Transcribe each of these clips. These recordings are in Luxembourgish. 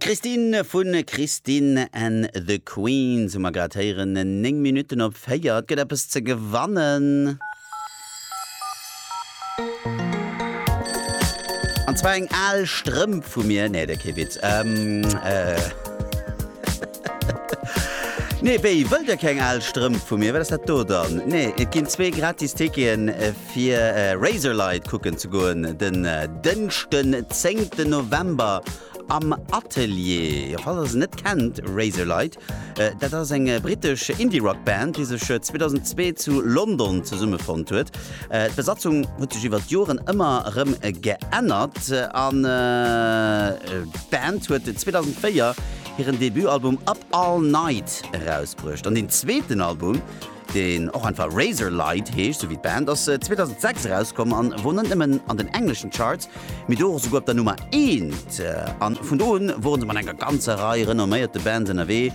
Christine vu Christine and the Queens hu mer grad héieren. 9 Minutten op 4. Et gëtt eppes ze gewannen. An zwar eng al Strëmp vu mir. Nee, de kee Witz. Ähm, äh. Nee, wéi? Wëllt der keng al Strëmp vu mir? Wat ass dat do dann? Nee, et ginn zwee gratis Ticketen. Äh, Fir Razorlight kucken ze goen den Dënschden 10 November am Atelier. Falls ass net kennt Razorlight, äh, dat ass eng britesch Indie-Rock-Band, déi sech 2002 äh, zu London zesummefonnt huet. Äh, D'Besatzung huet sech iwwer d'Joren ëmmer rëm geännert an äh, d'Band huet 2004 hiren Debutalbum Up All Night erausbruecht. An den zweeten Album deen och einfach Razorlight heescht, sou wéi d'Band, ass 2006 erauskomm a wor net nëmmen an den engleschen Charts, mee do och esouguer op der Nummer eent. A vun do un woren se mat enger ganzer Rei renomméierte Bands ënnerwee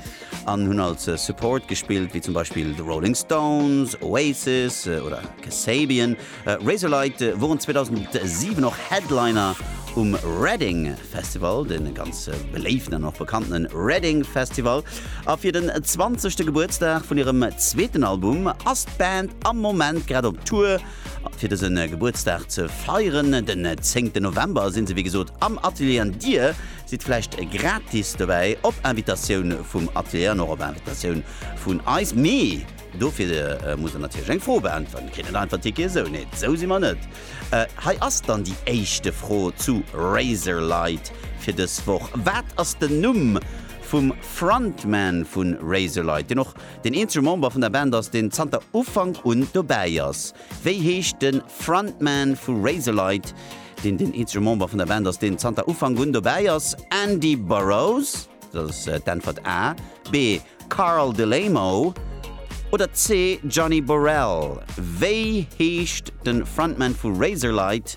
an hunn als Support gespillt, wéi zum Beispill The Rolling Stones, Oasis oder Kasabian. Razorlight woren 2007 och Headliner um Reading Festival, de ganz beléiften an och bekannte Reading Festival, a fir den zwanzegte Gebuertsdag vun hirem zweeten Album ass d'Band am Moment grad op Tour. Fir dëse Gebuertsdag ze feieren, den zéngten November, si se wéi gesot am Atelier an dir sidd vläicht gratis dobäi, op Invitatioun vum Atelier an och op Invitatioun vun eis. Mee. Dofir muss en natierlech eng Fro beäntweren. E kritt net einfach Tickete sou. Nee, sou si mer net. Hei ass dann déi éischte Fro zu Razorlight fir dës Woch. Wat ass den Numm vum Frontman vu Razorlight, deen och deen eenzege Member vun der Band ass, deen zanter Ufank un dobäi ass? Wéi heescht de Frontman vu Razorlight, deen deen eenzege Member vun der Band ass, deen zanter Ufank un dobäi ass? Andy Burrows? Dat ass d'Äntwert A. B, Carl Delemo. Oder C, Johnny Borrell. Wéi heescht de Frontman vu Razorlight,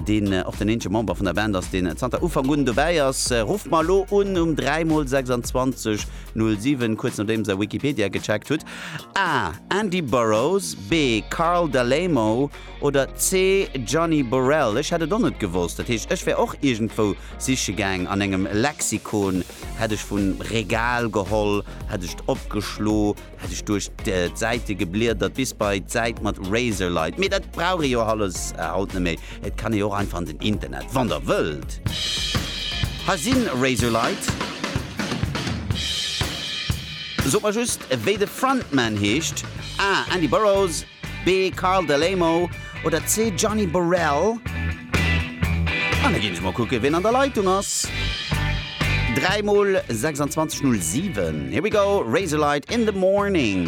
deen och den eenzege Member vun der Band ass, deen zanter Ufank un dobäi ass? Rufft mer elo un um 3 mol 26 07, kuerz nodeems der Wikipedia gecheckt hutt. A, Andy Burrows. B, Carl Delemo. Oder C, Johnny Borrell, ech hätt et och net gewosst. Dat heescht, ech wär och iergendwou siche gaang an engem Lexikon, hätt ech vum Regal geholl, hätt ech et opgeschlo, hätt ech duerch d'Säite gebliedert bis bei d'Säit mat Razorlight. Mee dat brauch ee jo alles haut net méi, et kann ee jo och einfach an den Internet, wann der wëllt. Hei si Razorlight. Sot mer just, wéi de Frontman heescht. Ah, Andy Burroughs. B, Carl Delemo oder C, Gianni Borrell? An da ginn ech mol kucken, wien an der Leitung ass. 3 mol 26 0, 7. Here we go, Razorlight in the morning.